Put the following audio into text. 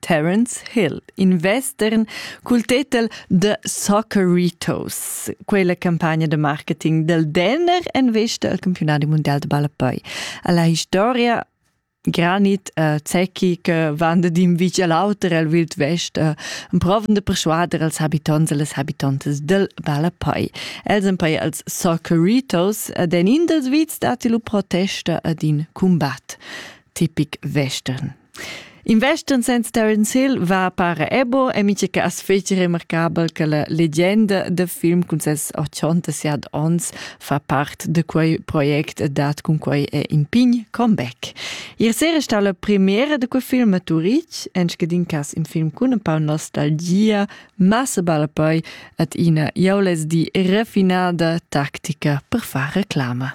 Terence Hill, in western cul tetel The Socceritos, quella campagna de marketing del Denner en vesta al campionat mondial de ballapoi. Alla historia granit uh, zecchi che van d'in vic all'auter al wild west uh, proven de persuader als habitants e les habitantes del Ballapoi. Els en poi als Socceritos ed en in dels vits dati lu protesta ad in combat tipic western. Investan senz Terence Hill va para ebo e mica che as feci remarcabel che la legenda da film cun ses 87 ons fa part da quei project e dat cun quei è in pign comeback. Ier sera sta la premiera da quei film a Turitg, en scadin cas in film cun un po nostalgia, ma se balla poi at ina jaules di refinada tactica per far reclama.